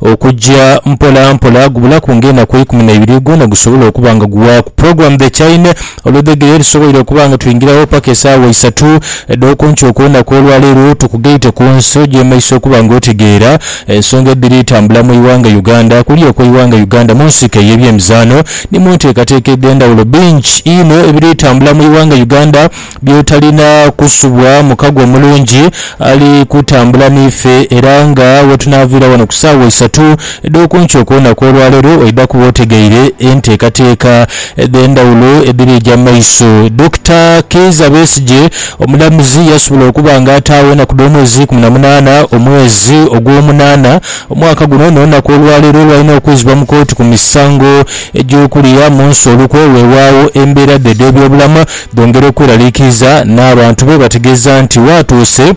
Okujja mpola mpola, gubulaku nga enaku eikumi naibiri gwona gusobola okuba nga guwaaku program the chaine oludhegere erisoboire okuba nga twingiragho paka esaawa isatu edhokunkyo okwenaku olwaleero. Tukugaite kunsi ojemeise okuba nga otegeera ensonga edhiri etambula mu iwanga Uganda. Kuli okwe iwanga Uganda munsiko eye byemizaano ni munteekateeka edhendhawulo. Bingi inho ebiri etambula mu iwanga Uganda. by'otalina kusubwa mukago omulungi ali kutambula n'ife era nga wetunaaviira wano ku saawa isatu edh'oku nkya okw'olunaku olwaleero oidha kuba otegeire enteekateeka edh'endhawulo edhiri eja mu maiso. Dokita Kiiza Besigye omulamuzi yasobola okuba nga ataagho enaku dh'omwezi ikumi na munaana omwezi ogw'omunaana omwaka guno n'olunaku olwaleero lwalina okwizibwa mu kooti ku misango egy'okulya munsi olukwe wewaagho embeera dhe edh'ebyobulamu Bongera okweraliikiriza n'abantu be bategeeza nti waatuuse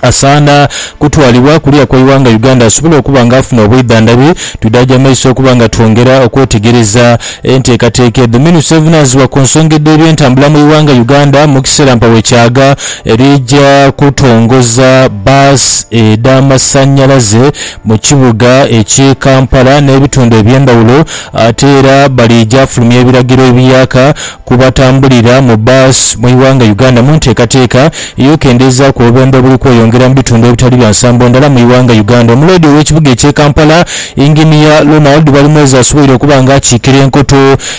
asaana kutwalibwa kuliya kwa Iwanga Uganda asobole okuba nga afuna obwidhandhabi. Twidhaagya maiso okuba nga twongera okwetegereza enteekateeka edho. Minisita evunaanyizibwa ku nsonga edh'ebyentambula mu Iwanga Uganda Mukiseera Mpawo Kyaga lija kutongoza bus edh'amasannyalaze mu kibuga eky Kampala n'ebitundu eby'endhawulo ate era baliija fulumya ebiragiro ebiyaaka ku batambulira mu bus mu ighanga Uganda mu nteekateeka ey'okendeezaaku obubembe obuli kweyongera mu bitundu ebitali bya nsambo ndala mu ighanga Uganda. Omuloodi ow'ekibuga eky'e Kampala, Engineer Ronald Balimwezo asoboire okuba nga akiikira enkoto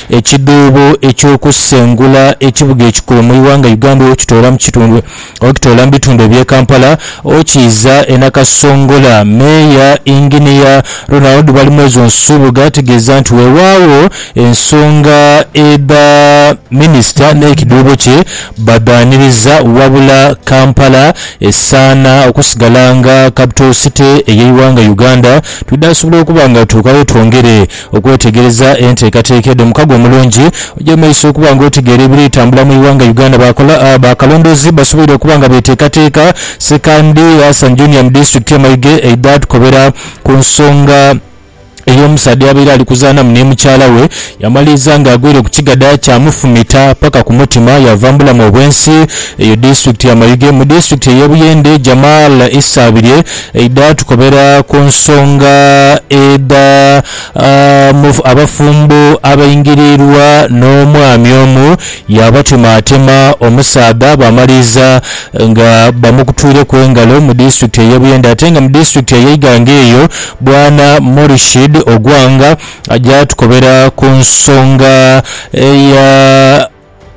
ekidhuubo eky'okusengula ekibuga ekikulu mu ighanga Uganda okukitoola mu kitundu Okitoola mu bitundu eby'e Kampala okiiza e Nakasongola, Meeya Inginiya Ronald Balimwezo Nsubuga ategeeza nti weewaawo ensonga edha Minisita n'ekiduubo kye badhaaniriza wabula Kampala esaana okusigala nga Capital City ey'eighanga Uganda twidhaasobola okuba nga tutuuka wetwongere Okwetegereza enteekateeka edho mukago omulungi oja mumaiso okuba nga otegeera ebiri tambula mu ighanga Uganda. Bakalondoozi basoboire okuba nga beteekateeka sekandi Hassan Junior mu disitulikiti ye Mayuge eidha tukobera ku nsonga ey'omusaadha eyabaire ali kuzaanamu ni mukyala we yamaliriza nga agwire ku kigadha kyamufumita paka ku mutima yaava mu bulamu obwensi eyo disitulikiti ya Mayuge. Mu disitulikiti eye Buyende Jamal Isabirye Eidha tukobera ku nsonga edha abafumbo abaingirirwa n'omwami omu yaabatemaatema omusaadha baamaliriza nga bamukutwireku engalo mu disitulikiti ey'e Buyende ate nga mu disitulikiti ey'e Iganga eyo Bwana Morishid Ogwang aja tukobera ku nsonga eya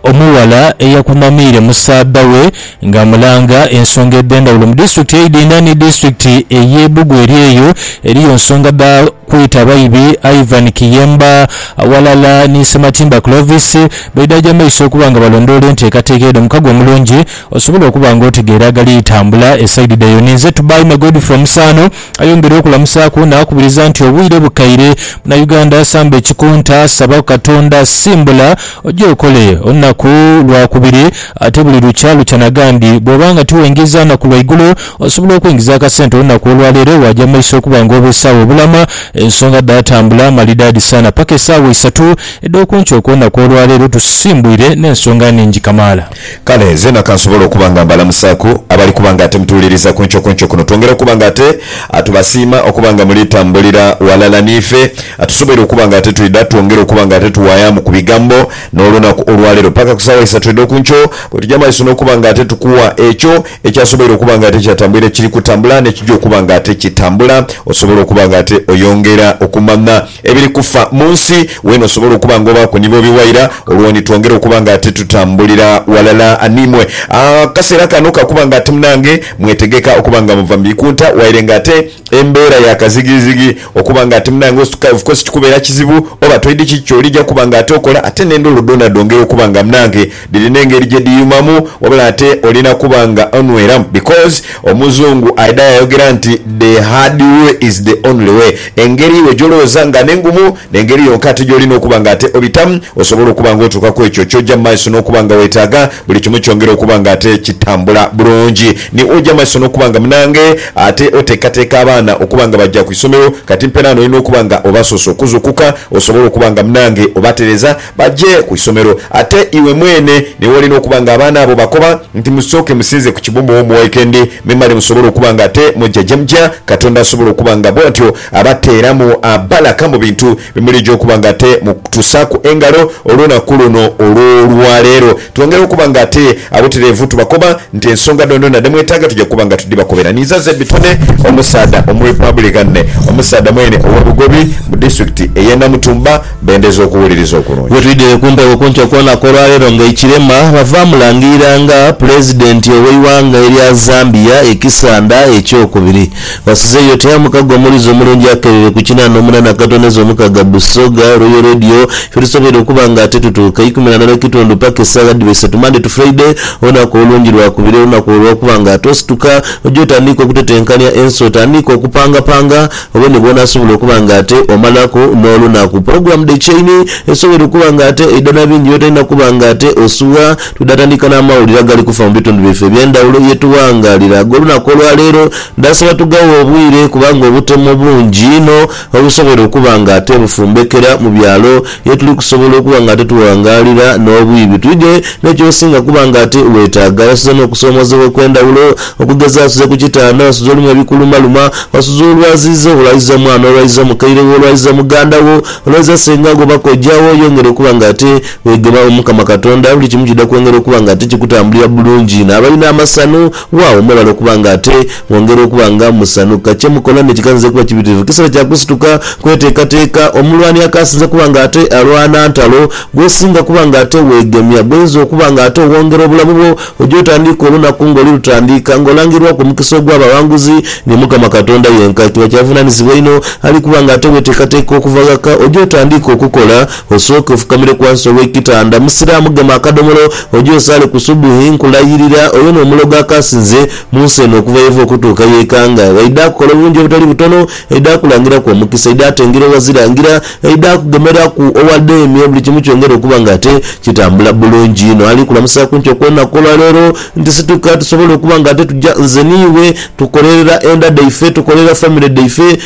Omughala eyakunamiire mu saadha we nga amulanga ensonga edhendhawulo mu disitulikiti eidhinha ni disitulikiti eye Bugu eri eyo eriyo nsonga dha kwita baibi Ivan Kiyemba aghalala ni Sematimba Clovis beidhaja amaiso okuba nga balondoola enteekateeka eyo mukago omulungi osobole okuba nga otegeera agali tambula esaidi dhe yoni nze Tubaime Godfrey Omusaano Ayongera okulamusaaku naakubiriza nti obwire bukaire Munauganda samba ekikunta, saba ku Katonda, simbula oje okole olunaku lwakubiri ate buli lukya lukya nagandi. Bwoba nga tiwengiza naku lwaigulo, osobola okwengiza akasente olunaku olwaleero waaja mumaiso okuba nga obeesaawo obulama. Ensonga dhaatambula malidaadi sana paka esaawa isatu edhokunkyo okwonaku olwaleero tusisimbuire n'ensonga ningi kamaala. Kale nzena kansobole okuba nga mbalamusaaku abali kuba nga ate mutuwuliriza ku nkyo ku nkyo kuno. Twongere okuba nga ate tubasiima okuba nga muli tambulira ghalala n'ife. Tusoboire okuba nga ate twidha twongere okuba nga ate tuwaayaamu ku bigambo n'olunaku olwaleero paka ku saawa isatu edho ku nkyo bwe tuja maiso n'okuba nga ate tukuwa ekyo ekyasoboire okuba nga ate kyatambwire kiri kutambula n'ekija okuba nga ate kitambula osobole okuba nga ate oyongera okumanha Ebiri kufa mu nsi. Weena osobola okuba nga obaaku ni bobi waira, olwo ni twongera okuba nga titutambulira walala n'imwe. Akaseera kano ka kuba nga ate munange mwetegeka okuba nga muva mu bikunta waire nga ate embeera ya kazigizigi okuba nga ate munange of course kikubeera kizibu oba toidhi kiki ky'olija kuba nga ate okola ate n'endholo dhoona dhongera okuba nga munange Dhirina engeri gyedhiyumamu wabula ate olina kuba nga onweramu because omuzungu aidha yayogera nti the hard way is the only way engeri iwe gyolowooza nga nengumu nengeri yonka ate gyolina okuba nga ate obitamu osobole okuba nga otuuka kwekyo kyoja mumaiso nokuba nga wetaaga buli kimu kyongere okuba nga ate kitambula bulungi ni oja mumaiso nokuba nga munange ate oteekateeka abaana okuba nga baja kwisomero kati mperani olina okuba nga obasoose okuzukuka osobole okuba nga munange obatereza Baje ku isomero. Ate iwe mwene ni w'olina okuba nga abaana abo bakoba nti, Musooke musinze ku kibumba ow'omu wikendi, memale musobole okuba nga ate muja gye muja. Katonda asobola okuba nga bw'atyo abateeramu bbalaka mu bintu bye muliija okuba nga ate mutusaaku engalo olunaku luno olw'olwa leero. Twongere okuba nga ate abutereevu tubakoba nti ensonga dhoondhoona dhe mwetaaga tuja kuba nga tudhibakobera. Ninza ze bitone omusaadha Omurepublican, omusaadha mwene ow'e Bugobi mu disitulikiti ey'e Namutumba, bendeza okuwuliriza okulungi. Bwetwidhire ku mpewo kunkyo kwona kwolwaleero nga ekirema bava mulangirira nga Pulezidenti oweighanga erya Zambia ekisanda ekyokubiri. Wasizeyo oti aye omukago omulize omulungi akerere ku kinana omunana katoneza omukaga Busoga Royal Radio fyetusobeire okuba nga ate tutuuka ikumi nana nekitundu paka esagha dhiba isatu Monday to Friday olunaku olungi lwakubiri olunaku olwokuba nga ate osituka oja otandiika okutetenkania ensi otandiika okupangapanga Obwire bwona asobola okuba nga ate omalaku n'olunaku. Pulogulaamu dhe kyeini esobwoire okuba nga ate eidha na bingi by'otalina kuba nga ate osubwa. Twidha tandika n'amawulire agali kufa mu bitundu byaife eby'endhawulo ye tughangalira ag'olunaku olwa leero. Ndhasaba tugaghe obwire kubanga obutemo bungi inho obusobwoire okuba nga ate bufumbekera mu byalo ye tuli kusobola okuba nga ate tughangaalira n'obwibi. Twidhe ni ky'osinga kuba nga ate weetaaga. Wasuze n'okusoomoozebwa okw'endhawulo. Okugeza, wasuze ku kitanda, wasuze olimu ebikulumaluma, wasuze olwaziiza, olwaziiza mwana, olwaziiza mukaire wo, olwaziiza muganda wo, olwaziiza senga wo oba kojja wo. Yongera okuba nga ate weegema Omukama Katonda. Buli kimu kidha kwongera okuba nga ate kikutambulira bulungi. N'abalina amasanhu Wawo mwebale okuba nga ate mwongera okuba nga musanhuka. Kye mukola ni kiganziza okuba kibitirivu. Kiseera kya kusituka kweteekateeka. Omulwani akaasinze kuba nga ate alwana ntalo, gw'osinga kuba nga ate weegemya, gw'oinza okuba nga ate owongera obulamu bwo, oja otandiika olunaku ng'oli lutandiika nga olangirwaku omukisa ogw'abawanguzi ni Mukama Katonda yenka. Kiba kya buvunanizibwa inho ali kuba nga ate weteekateeka okuva ghaka oje otandiike okukola Osooke ofukamire ghansi ow'ekitanda, Musiraamu gema akadomolo oje osaale ku Subuhi, nkulayirira oyo n'omulogo akaasinze mu nsi eno okuva yeva okutuuka y'ekanga, aidha akukola obulungi obutali butono, aidha akulangiraku omukisa, aidha atengera owazirangira, aidha akugemeraku owadheemye, buli kimu kyongere okuba nga ate kitambula bulungi inho. Ali kulamusaaku nkyo ku olunaku olwa leero nti situka tusobole okuba nga ate tuja nze n'iwe tukolerera enda dhaife, tukolerera famire dhaife,